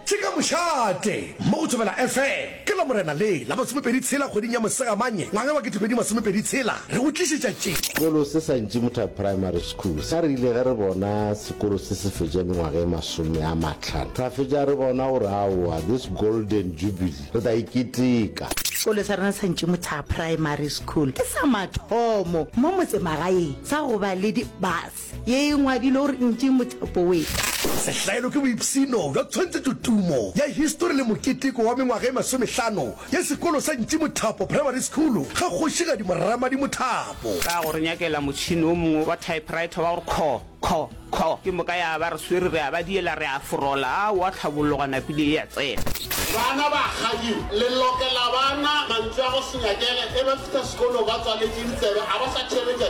Tshika Mošate mo go Thobela FM ke Lamorena le la masomepedi tshela kgweding ya Mosegamanye ngwaga wa ketepedi masomepedi tshela re go tlišetša tše. Sekolo se sa Ntšimutha Primary School sa re ile ge re bona sekolo se se fetša mengwaga e masome a matlhano ra fetša re bona gore aowa this golden jubilee re tla e keteka. Sekolo sa rena sa Ntšimutha Primary School ke sa mathomo mo motsemagaeng sa go ba le di bus. Ye e ngwadilwe gore e ntše mothapo we. Sehlaelo ke boipshino bja tshwantshetšo tumo ya histori le moketeko wa mengwaga e masomehlano ya sekolo sa Ntši Mothapo Primary School ga Kgošigadi Moramadi Mothapo. Ka go re nyakela motšhini o mongwe wa typewriter wa gore kho, kho, kho, ke moka ya ba re swere re a ba diela re a forola, a o a tlhabologa napile e a tsena. Bana ba kgadi le lokela bana mantswe a go se nyakele e ba fihla sekolo ba tswaletše ditsebe a ba sa theeletša.